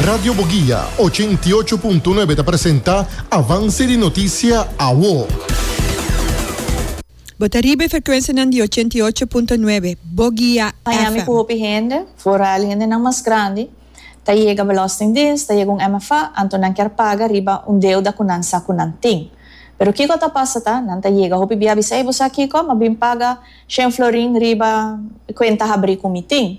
Radio Boguia, ochenta i ocho punto nuebe ta presenta Avance di Noticia Awo. Bo ta riba e frecuencianan di ochenta i ocho punto nuebe Boguia Miami ku FM. hopi hende, foral hendenan mas grandi, ta yega Belastingdiens, ta yega un MFA, anto nan kier paga riba un deuda ku nan sa ku nan tin. Pero kiko ta pasa ta, nan ta yega hopi bia bisa, ey bo sa kiko, m'a bin paga shen florin riba e kuenta habri ku mi tin.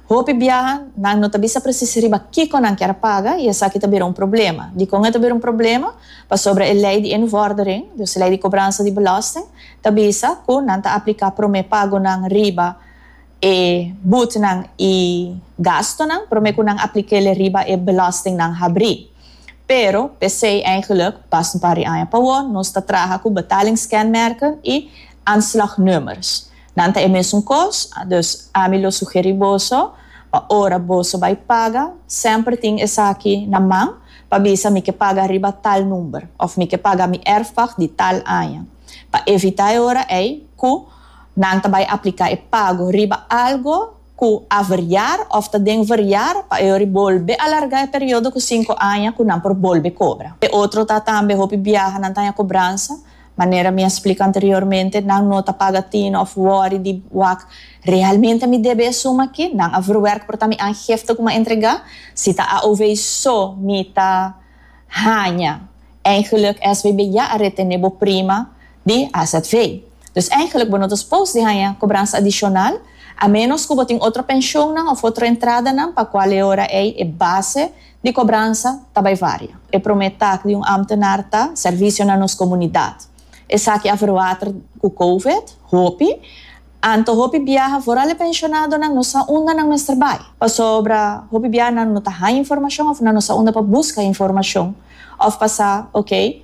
Hopi biaha, nan no ta bisa presis riba kiko nan kier a paga i esaki ta bira un problema. Dikon e ta bira un problema? Pasobra e lei di e nuvòrdering, dus e lei di kobransa di belòsting, ta bisa ku nan ta apliká promé pagonan riba e butnan i gastunan promé ku nan apliká el'e riba e belòstingnan habrí. Pero, p'esei eigenlik, pas un par di aña pa wou, nos ta traha ku betalingskenmerken i aanslagnummers. Nan ta e mesun kos, a dus ami lo sugeri boso pa ora boso bai paga semper tin esaki na man pa bisa mi ke paga riba tal number of mi ke paga mi erfpacht di tal aña pa evita e ora ei ku nan ta bai aplika e pago riba algo ku a verjar of ta den verjar pa e ora bolbe alarga e periodo ku sinku aña ku nan por bolbe kobra. E otro ta tambe hopi biaha nan ta haña kobransa Manera mi a splica anteriormente, nan no ta paga tin of worry di wak, Realmente mi debe e suma aki? Nan a verwerk por ta mi aangifte cu mi a entrega? Si ta AOV so mi ta haña? Eigenlijk SBB ya a retene bo prima di azv. Dus eigenlijk bo no ta supos di haña cobransa adicional, a menos cu bo tin otro pensioennan of otro entradanan pa cual e ora ey e base di kobransa ta bai varia. E promé tak di un ámtenar ta sèrvisio na nos komunidat. Esaki a verwater ku kouvet, hopi. Anto hopi biaha, foral e penshonadonan no sa unda nan mester bai. Pasobra hopi biaha nan no ta haña informashon òf nan no sa unda pa buska informashon òf pa sa, ok,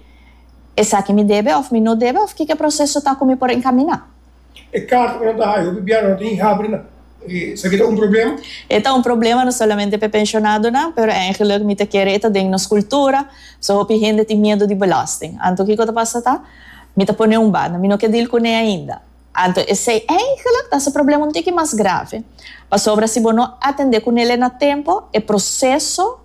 esaki mi debe òf mi no debe òf kiko e proseso ta ku mi por enkaminá. E karta ku nan ta haya hopi biaha nan no ta hinga habri nan. Esaki ta un problema? E ta un problema no solamente pa e penshonadonan, pero eingelik mi ta kere e ta den nos kultura. So hopi hende tin miedu di belasting. Anto kiko ta pasa ta mi ta pone un banda, mi no ke dil kuné ainda. Anto esei eingelik ta hasi e problema un tiki mas grave, pasobra si bo no atendé kunelei na tempo, e proseso.